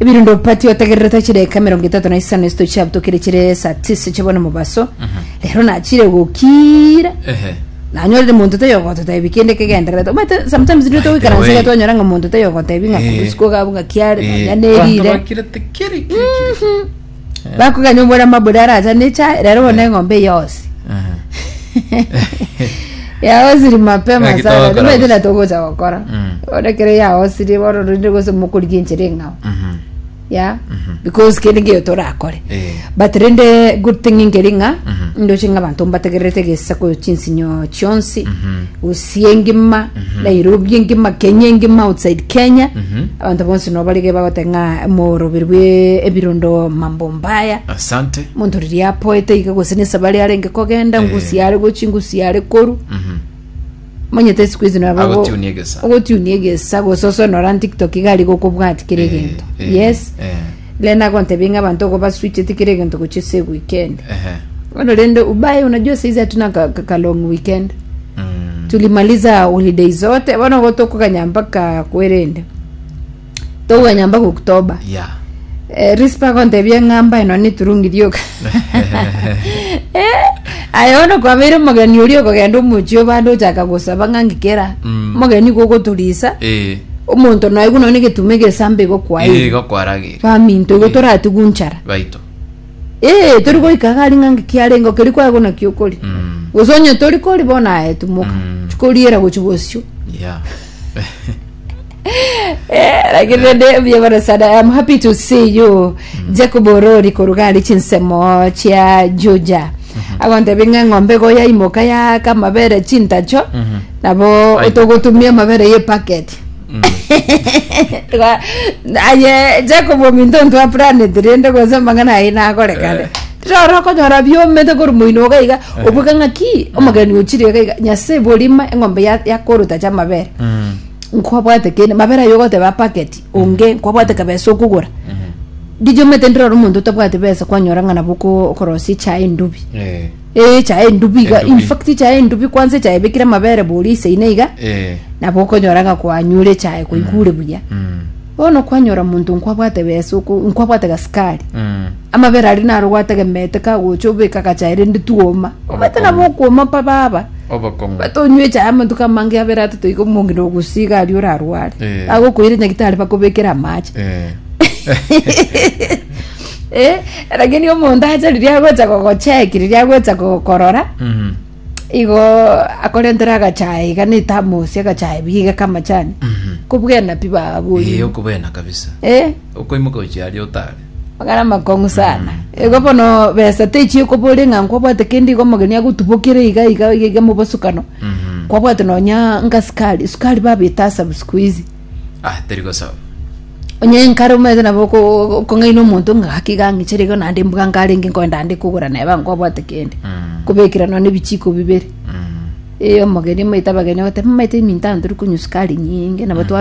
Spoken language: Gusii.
Ebirundo pati otegerere tachire eka emerongo etato na isano esito chiabutokire chire saa tisa chia bono mobaso rero nachire gokiira Ehe. nanyorire monto taiyo ogototebi kende kegendererete omanyete sometimes nigo By the togoikaransa way. iga twanyora ng'a monto taiyo ogotebi ng'a Eh. kurusia kogabu ng'a kiare Eh. nonya Abanto nerire bakire tekiri, kiri, kiri, kiri. bakogania omwana mabori aracha ne echae rero bono eng'ombe eye yonsi Aha. yaosiri mapema Ngaki sana togokora nimaete gose. natogocha gokora Mm. bono kere yaosiri bono rende gose mokorigia enchera eng'ao Mhm. ya because kende ngeyo torakore Eh. but rende good thing ngeri ng'a Mhm. ndoche ng'a abanto mbategererete egesako chinsinyo chionsi Mhm. gose Asia engima, Nairobi engima, Kenya engima, outside Kenya. Abanto bonsi no barige bagote ng'a emoroberi bwe ebirondo mambo mbaya. asante Monto riria apoete iga gose nesabari arenge kogenda, ngusi are gochi, ngusi are koru. Monyete siku hizi nabo Agotunia egesa. ogotunia egesa gose osonora TikTok iga ari gokobwati kere Eh, egento. eh, Yes. eh. Rende nagontebia ng'a abanto ogo baswiche tikiri egento gochia ase eweekend. Ehe. Bono rende ubaye unajua saizi hatuna ka, ka, ka long weekend Mm. tulimaliza holiday zote bono go tokoganya mpaka kwerende tokoganya mpaka oktoba Yeah. eh, rispa agontebia ng'a mbae nonye turungi rioka Eh, aya bono kwabeire omogeni oria okogenda omochie obande ochaka gosaba ng'a ngikera Mm. omogeni igo ogoturisa Eh. omonto naigwe nonya egetumo egesambe igo Ee, kwaeire igo kwarageire. baminto igo toratigwe nchara Baito. ee tori goika iga ari ng'a nki kiarenge keri kwaigwa naki okori Mm. gose onye tori kori bono aye tumoka Mm. chikoriera gochi bosio Yeah. Eh, lakini nende buya bono sana I'm happy to see you Jacob Orori korugari chinsemo chia Juja agontebinga ng'ombe goya imoka ya kamabere chintacho nabo Aye. otogotumia amabere ye packet Twa- aye jacob ominto ntwa planet rende gose mang'ana aye nagore kare rora okonyora biomete kori moino iga iga obweka ng'aki omogeni ochire iga iga nyase borima eng'ombe ya- yakoruta cha amabere Mm. nkwabwate kende mabere ayo ogoteba packet onge nkwabwate kabesa okogora ndichomete ndirora omonto otabwate besa kwanyora ng'ana boko okorosia echae endubi Eh. Ee echae endubi iga Endubi. in fact echae endubi kwanza echae ebekire amabere boria isaine iga Eh. nabo okonyora ng'a kwanyure echae kwaigure buya Mm. bono kwanyora monto nkwabwate besa oko nkwabwate gasukari Mm. amabere aria naro gwategemeete kagocha obeka agachae rende twoma obate nabo okwoma pa baba Obokong'u. bate onywe echae amantuko amange abere atato iga omonge nogusiga aria orarware Eh. agokoire nyagitari bakobekere amache Eh. Eh, lakini omonto acha riria agocha gogocheki riria agocha gokorora Mhm. igo akorentere agachae iga na etamosi agachae biga kamachani Mhm. kobwena pi Eh, baburi okobena kabisa eh okoimoka gochia aria otare ogara makong'u sana igo bono besa techie kobore ng'a nkwabwate kende igo omogeni agotubokere iga iga iga iga mobosukano Mhm. kwabwate nonya nka sukari sukari babita asabu siku hizi Ah, teri gosoa. Onye nkare omanyete nabo oko- okong'aina omonto ng'a gaki gang'ichere igo naende mbuga nkarenge nkoenda ande kogora naye bankobwate kende Mm. kobekera nonya ebichiko bibere Mm. ee omogeni omaete abageni ogote mamaete eminto ano tori konywa sukari nyinge nabo twa